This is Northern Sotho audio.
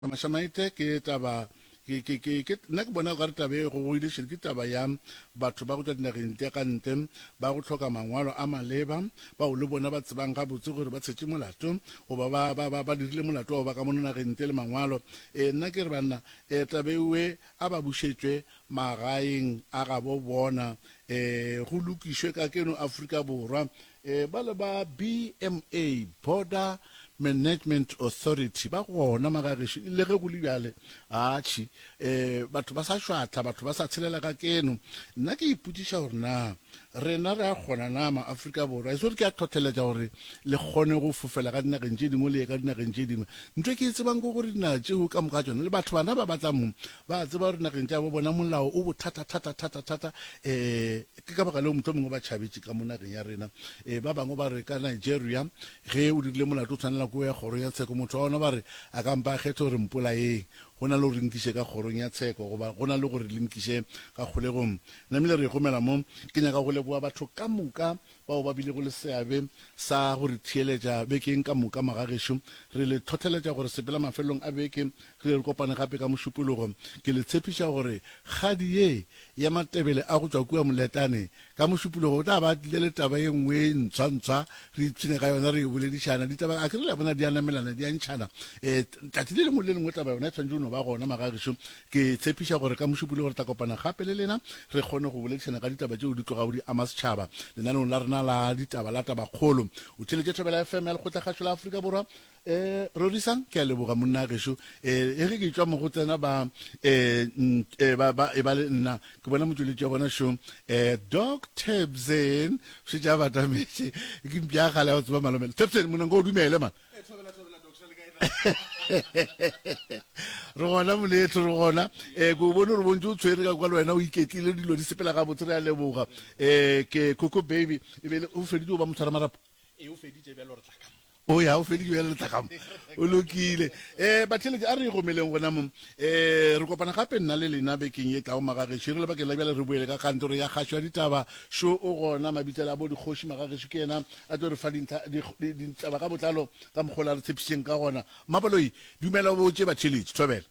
Mashamaite ke taba ke ke ke ke nna ke bona okare taba e gogogile šele ke taba ya batho ba go tšwa dinageng tša ka ntle ba go tlhoka mangwalo a maleba bao le bona ba tsebang ga botse gore ba tshetše molato goba ba ba ba ba dirile molato wa go ba ka mono nageng ntle le mangwalo e nna ke re banna e taba ewe a ba bušetšwe magaeng a ga bo bona e go lokišwe ka keno Afrika Borwa Ee, bale ba BMA, Border Management Authority, ba gona magageši le ge go le bjale. Atšhi, ee, batho ba sa šwahla, batho ba sa tshelela ka keno. Nna ke ipotšiša gore na rena re a kgona na ma-Afrika Borwa, e se gore ke a hlohleletša gore le kgone go fofela ka dinageng tše dingwe le ye ka dinageng tše dingwe. Ntho e ke e tsebang ke gore dinaga tšeo ka moka tšona le batho bana ba ba tla mo ba a tseba gore nageng tša bo bona molao o bothata-thata-thata-thata, ee, Ke ka baka leo mohlomongwe ba tšhabetše ka mo nageng ya rena. E, ba bangwe ba re ka Nigeria, ge o dirile molato o tshwanela ke go ya kgorong ya tsheko. Motho wa gona ba re a ka mpa a kgetha gore mpolayeng go na le gore nkiše ka kgorong ya tsheko goba go na le gore le nkiše ka kgolegong. Namile re gomela mo. Ke nyaka go leboga batho ka moka bao ba bilego le seabe sa go re theeletša bekeng ka moka. Magagešo, re le hlohleletša gore sepela mafelelong a beke Re kopane gape ka Mošupologo. Ke le tshepiša gore kgadi ye ya Matebele a go tšwa kua Moletane, ka Mošupologo o tla ba a tlile le taba ye nngwe ye ntswa-ntswa, re ipshine ka yona, re e boledišana. Ditaba, a ke re le a bona, di a namelana, di a ntšhana. E, tšatši le lengwe le lengwe taba yona e swanetše go no ba gona, magagešo. Ke tshepiša gore ka Mošupologo re tla kopana gape le lena, re kgone go boledišana ka ditaba tšeo di tlogago di ama setšhaba, lenaneong la rena la ditaba la Tabakgolo. O theeletše Thobela FM ya Lekgotlakgašo la Afrika Borwa. E, Rorisang, ke a leboga, monna gešo. E, e ge ke tšwa mo go tsena ba, e, e, ba, ba, e ba le nna, ke bona motšweletši wa bona šo, e, Doc Tebsen, šetše a batametše, ke mpša ya kgale ya go tseba malomela. Tebsen, monanko o dumele, man. E, thobela, thobela, Doc, šale kae na? Re gona, moleetlo, re gona. E, ke o bone gore bontši o tshwere ka kwa le wena, o iketlile, dilo di sepela gabotse, re a leboga. E, ke Coco Baby, e be le, o feditše go ba motshwaramarapo? E, o feditše, bjalo re tla ka mo. o ya o feditse bjale letlakamo o lokile um batheletše a re gomeleng gona mo um re kopana gape nna le lena bekeng e tlago magagešo e re lebakeng la bjale re boele ka kantoro ya kgašo ya ditaba šo o gona mabitsela a bo dikgoši magagešo ke yena a tlo re fa ditaba ka botlalo ka mokgola re tshepišitšeng ka gona mmabaloi dumela o botse batheletše thobela